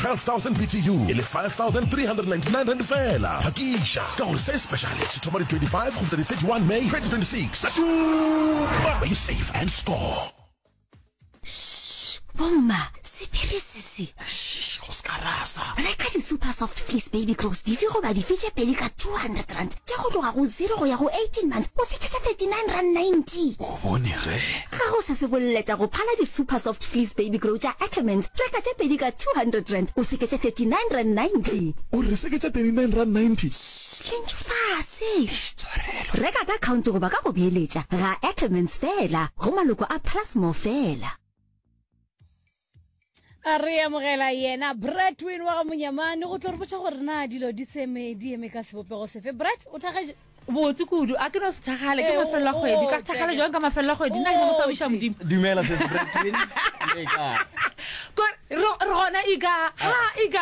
12,000 BTU e le R5,399 feela. Phakiša, ka gore se speciale se thoma di 25 go fihla di 31 May 2026. Sa tuma! Be safe and score! Shh! Bomma, sephiri se se. Shh! Go se ka rasa. Reka di-Super Soft Fleece Baby Clothes dife goba dife tše pedi ka R200 tša go tloga go zero go ya go 18 months go fihla tša R39.90. bone ge. Ga go se se bolle tša go phala di-Super Soft Fleece Baby Grow tša Ackermans, reka tše pedi ka R200, o seke tše R39.90. O re seke tše R39.90? Sss, le ntšwe fase! Eish, Tshwarelo! Reka ka khaonte goba ka go beeletša, ga Ackermans feela, go maloko a Plasmore feela. a re amogela yena bratwin wa ga monyamane go tlo re botša gore na dilo di tseme di eme ka sebopego sefe brat o thagetse botse kudu a ke no se thagale ke mafelelo a kgwedi ka thagale jwang ka mafelelo a kgwedi nna ke mosabiša modimo dumela se sebratwin re gona ika ha ika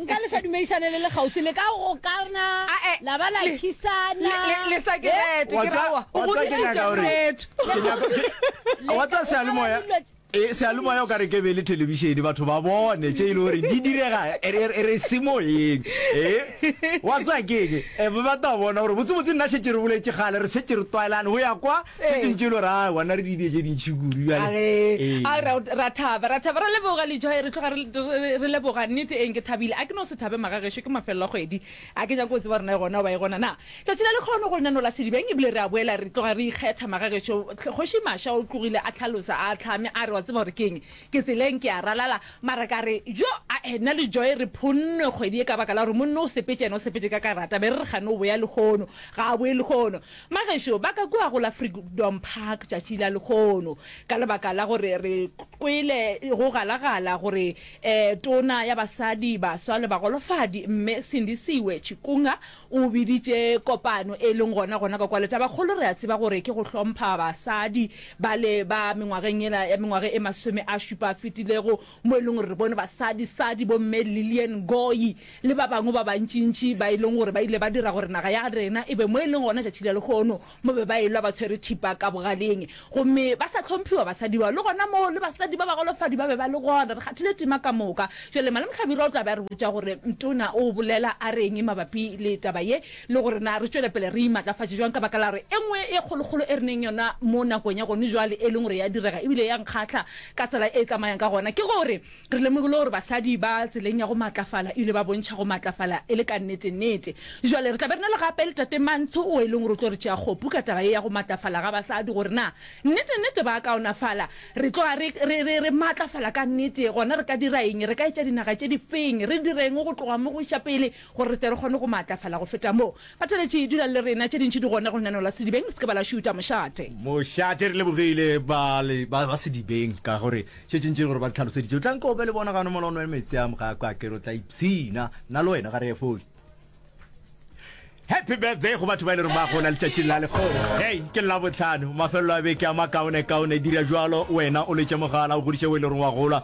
Nka le sa dumedišane le le kgauswi, le ka gokana, la ba la khisana. Le sa ke rete, ke ra wa godišitša moretho. Wa tsa sealemoya e sealemoya o ka re ke be le telebišene batho ba bone tše e le gore di direga re semoyeng e wa tswa keng e ba ta bona gore botsebotse nna šetse re boletše gale re šetse re tlwaelane go ya kwa se tšentše lo ra wana re didie tše dintšhi kudu jale ra thaba ra thaba re leboga le joy re tloga re leboga nnete eng ke thabile a ke no se thabe maga gešo ke mafelelo a kgwedi a ke nyako tseba rona e gona ba e gona na tšatši la lekgono go lenano la sedibeng e bile re a boela re tloga re ikgetha maga gešo kgoši masha o tlogile a tlhalosa a tlhame a re wa tseba gore keng ke tseleng ke a ralala mara ka re jo a ena le joy re phonne kgwedi e ka baka la gore monno o sepetše ena o sepetše ka karata be re re gane o boya lekgono ga a boye lekgono Bagešo ba ka kua go la Freedom Park tšatši la lekgono ka lebaka la gore re kwele go galagala gore Tona ya Basadi, Baswa le Bagolofadi, Mme Sindisiwe Chikunga o biditše kopano e leng gona gona ka kwa Letabakgolo. Re a tseba gore ke go hlompha basadi bale ba mengwageng yela ya mengwage e masome a šupa a fetilego mo e leng gore re bone basadisadi bomme Lilian Ngoyi le ba bangwe ba bantšintši ba e leng gore ba ile ba dira gore naga ya rena e be mo e leng gona tšatši la lekgono mo be ba elwa ba tshwere thipa ka bogaleng gomme ba sa hlomphiwa basadi bao le gona moo le basadi ba bagolofadi ba be ba le gona re kgathile tima ka moka jale Malemohlabira o tla be a re botša gore mtona o bolela a reng mabapi le taba ye le gore na re tšwele pele re imatlafatše bjang ka baka la gore e nngwe e kgolokgolo e re neng yona mo nakong ya gone bjale, e leng gore ya direga e bile ya nkgahla ka tsela e e tsamayang ka gona, ke gore re lemogile gore basadi ba tseleng ya go maatlafala e bile ba bontšha go maatlafala e le ka nnete-nnete. Bjale re tla be re na le gape le Tate Mantsho o e leng gore o tlo re tšea kgopu ka taba ye ya go maatlafala ga basadi, gore na nnete-nnete ba a kaonafala, re tloga re, re, re, re maatlafala ka nnete, gona re ka dira eng, re ka etša dinaga tše difeng, re direng go tloga mo go iša pele, Gore re tle re kgone go maatlafala go feta moo, Kgotheletše, dulang le rena. Tše dintši di gona go nanola sedibeng. Se ke ba la šuta mošate. Mošate, re lebogile ba, ba, ba sedibeng, ka gore tše tše ntši gore ba di tlhaloseditše. O tla nko o be le bona gano mola o nwe meetse a mogako, a ke re o tla ipshina. Nna le wena ga re ye fole. Happy birthday go batho ba e le reng ba gola letšatšing la lekgogo. Hei, ke Labohlano, mafelelo a beke a makaonekaone. Dira bjalo wena o letše mogala, o godiše o e le reng wa gola.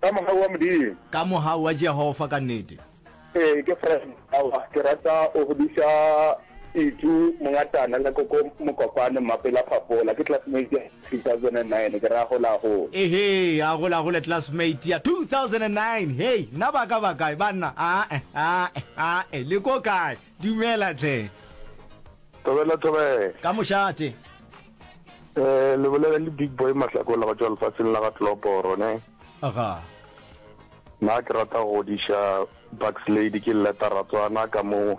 Ka mohau wa Modimo. Ka mohau wa Jehova ka nnete. Ee, ke Fred. Aowa, ke rata o godiša Itu Mongatana le Koko Mokopane, Mmapela Phafola. Ke classmate ya 2009, ke re a gole, a gole. Ehee, a gole, a gole, classmate ya 2009. Hei, nna ba ka ba kae, banna? Aa-e, aa-e, aa-e, le ko kae? Dumela tle. Thobela thobela. Ka mošate. Eh le bolela le big boy mahlakola go tšwa lefatsheng la ga Tloporo ne. Aga. Na ke rata go diša Bucks Lady ke leta ratswana ka mo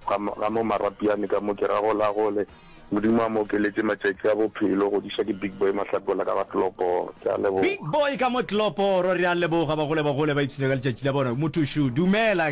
ga mo marapiane ka mo ke ra gola gole. Modimo a mo okeletse matšatši a bophelo go diša ke big boy mahlakola ka ga Tloporo. Ke a leboga. Big boy ka mo Tloporo re a leboga bagole bagole ba ipshina ka letšatši la bona. Motho shu. Dumela.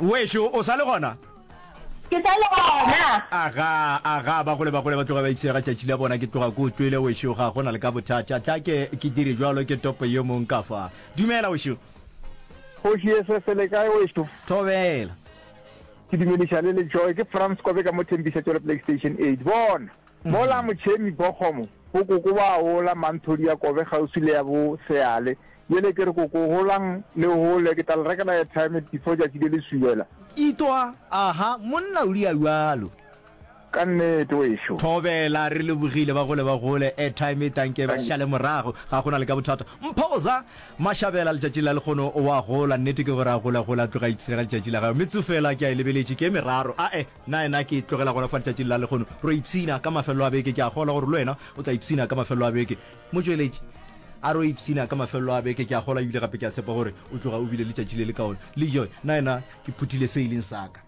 wešo o sa le gona ke sa le gona aga aga ba gole ba gole ba tloga ba ipsega tšatši la bona ke tloga ko utlwele wešo ga go na le ka bothata tla ke ke dire jalo ke topo yo mong ka fa dumela wešo kgoši ye se se le kae wešo thobela ke dumediša le le joy ke france kobe ka mo thembiša tšwele playstation eight bona Mola Motšhemi Bokgomo bo koko ba ola manthodi ya Kobe kgauswi le ya bo Seale. Bjale ke re koko holang le hole, ke tla le rekela airtime before tšatši le le subela. Itwa, Aha, monna o lia bjalo. Ka nnete, wešo. Thobela, Re lebogile, ba gole ba gole. Airtime e tanke ba šale morago, ga go na le ka bothata. Mphoza, Mashabela, letšatši la lekgono o a gola. Nnete ke gore a gole a gole a tloga a ipsrega letšatši la gagwe. Metsufela ke a e lebeletše, ke e meraro. A-e. Na yena ke tlogela gona fa letšatšing la lehono? Re ipshina ka mafelelo a beke. Ke a kgolwa gore le wena o tla ipshina ka mafelelo a beke. Motšweletši, A re o ipshina ka mafelelo a beke? Ke a kgolwa ebile gape ke a tshepa gore o tloga o bile letšatši le lekaone. Lejoy, Na yena ke phuthile se e leng sa ka?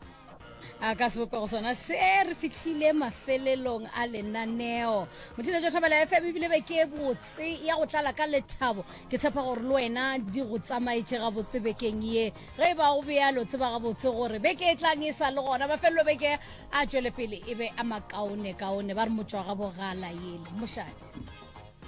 A ka sebopego sona se, re fihlile mafelelong a lenaneo. Motšweletši wa Thobela FM, ebile beke e botse ya go tlala ka lethabo. Ke tshepa gore le wena di go tsamaetše gabotse bekeng ye. Ge e ba go bjalo, tseba gabotse gore beke e tlang e sa le gona. Mafelelo beke a tšwelepele e be a makaonekaone, ba re motšwagabogala yele. Mošate.